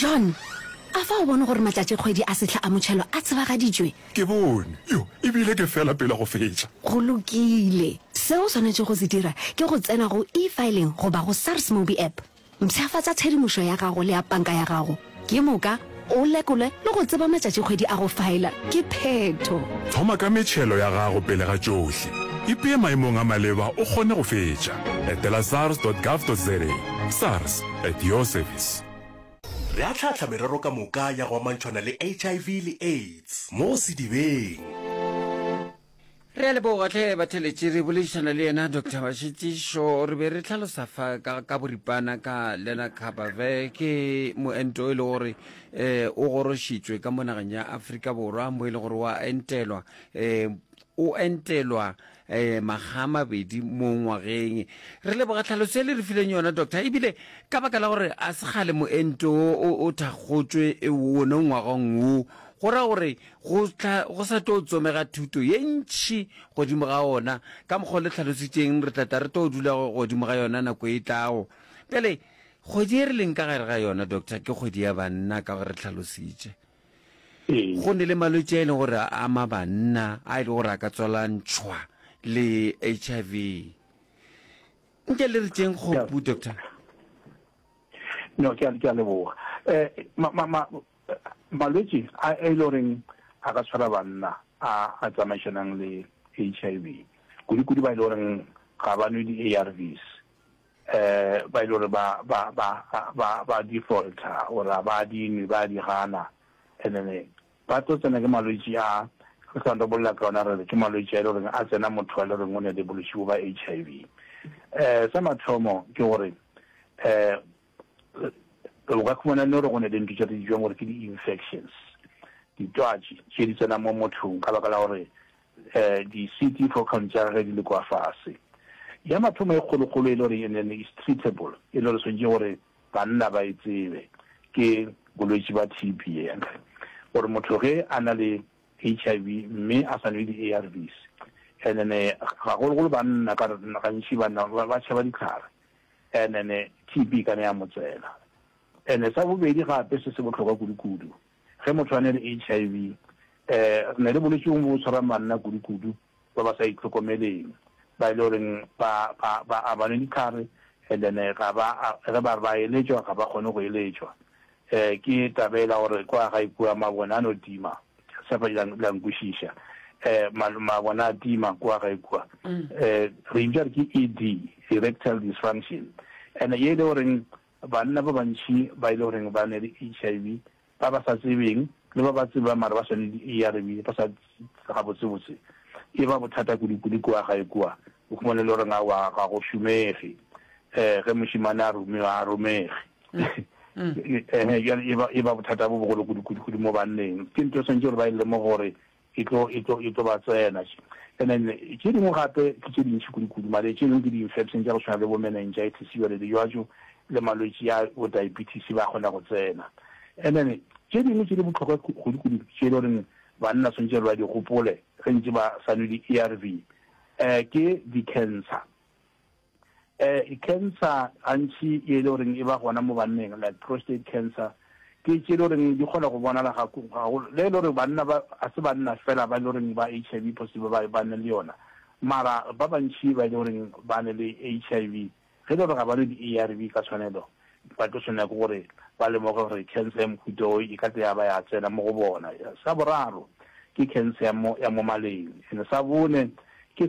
John, a fa o bone gore matšatšikgwedi a sehla a motšhelo a tsebagaditšwe? Ke bone. Yo, e bile ke fela pele go fetša. Go lokile. Seo o swanetšego go se dira ke go tsena go E-filing goba go SARS Mobi App. Mpshafatša tshedimošo ya gago le ya panka ya gago ke moka o lekolwe le go tseba matšatšikgwedi a go faela ke phetho. Thoma ka metšhelo ya gago pele ga tšohle. Ipee maemong a maleba o kgone go fetša. Etela sars dot gov dot za. SARS. At your service. Re ahlaahlaa merero ka moka ya go amantšhwana le HIV le AIDS mo sedibeng. Re a leboga tlhe batheletši. Re boledišana le yena Doctor Mašetšišo. Re be re hlalosa fa ka, ka boripana ka lenacabave. Ke moento e le gore um o gorošitšwe ka mo nageng ya Afrika Borwa mo e le gore wa entelwa um o entelwa makga a mabedi mo ngwageng. Re leboga tlhaloso e le re fileng yona, Doctor. Ebile ka baka la gore a se kgale moento o o thakgotšwe one ngwagong wo, go ra gore go tla go sa tlo tsomega thuto ye ntšhi godimo ga ona, ka mokgwa o le tlhalositšeng re tla tla re tlo dula godimo ga yona nako e tlago. Bjale kgwedi e re leng ka gare ga yona, Doctor, ke kgwedi ya banna ka gore re tlhalositše. Go ne le malwetši a e le gore a ama banna a e le gore a ka tswalantšhwa le HIV. Nke le re tšeng kgopu, Doctor? No, ke a leboga. Um malwetši a e le goreng a ka tshwara banna a a tsamaišanang le HIV, kudu-kudu ba e le goreng ga ba nwe di-ARVs, ba e le gore ba, ba, ba, ba, ba di faulta, or a ba di nwe, ba di gana, and then ba tlo tsena ke malwetši a, re sa ntho bolela ka ona, re re ke malwetši a e le gore a tsena motho wa e le gore o ne a di bolwetši bo ba HIV. Um sa mathomo ke gore, um o ka khumana le gore go ne le ntho tše re di bitšang gore ke di-infections, ditwatši tše di tsena mo mothong ka baka la gore Di city for count tša gage di le kwa fase. Ya mathomo e kgolokgolo e le gore e ne is treatable, e le gore swantše gore banna ba e tsebe, ke bolwetši ba TB. Yantle gore motho ge a na le HIV mme a sa nwe di ARVs, ene gagologolo banna ka gore gantši banna ba tšhaba dihlare, ene TB e ka ne ya mo tsena. Ene sa bobedi gape se se bohlokwa kudukudu, Ge motho a ne le HIV, re ne re boletše go bo tshwarang banna kudukudu ba ba sa itlhokomeleng, ba e le goreng ba, ba, ba a ba nwe dihlare, and then ga ba, ge ba re ba eletšwa, ga ba kgone go eletšwa. Um, ke taba e la gore kwa gae kua mabone a no tima, ke tshepa la, la nkwešiša. Um, ma, mabone a tima kwa gae kua. Um, re e bitša gore ke ED, erectile dysfunction, and ye e le goreng Banna ba bantši ba e le goreng ba ne le HIV, ba ba sa tsebeng le ba ba tsebang mara ba sa nwe di-ARV ba sa gabotsebotse, e ba bothata kudukudu kua gae kua. O khumana e le goreng aowa ga go šomege ge mošemane a rumiwa, ga a romege. Ehe, bjale e ba bothata bo bogolo kudukudu mo banneng. Ke ntho e swanetše gore ba e lemoge gore e tlo, e tlo, e tlo ba tsena. And then tše dingwe gape ke tše dintši kudu-kudu, mare tše dingwe ke di-infection tša go swana le bo meningitis, jwale dijwatšo le malwetši a bo diabetes ba kgona go tsena. And then tše dingwe tše di bohlokwa kudu-kudu tše e le goreng banna swantše ba di gopole ge ntše ba sa nwe di-ARV um ke di-cancer. Cancer gantši ye e le goreng e ba gona mo banneng like prostate cancer ke tše e le goreng di kgona go bonala ga le e le gore banna ba a se banna fela ba e le goreng ba HIV positive ba ba ne le yona mara ba bantši ba e le goreng ba ne le HIV ge e le gore ga ba nwe di-ARV ka tshwanelo ba tlo tshwanela ke gore ba lemoge gore cancer ya mohuta o e ka tle ya ba ya tsena mo go bona. Sa boraro ke cancer ya mo ya mo maleng and sa bone ke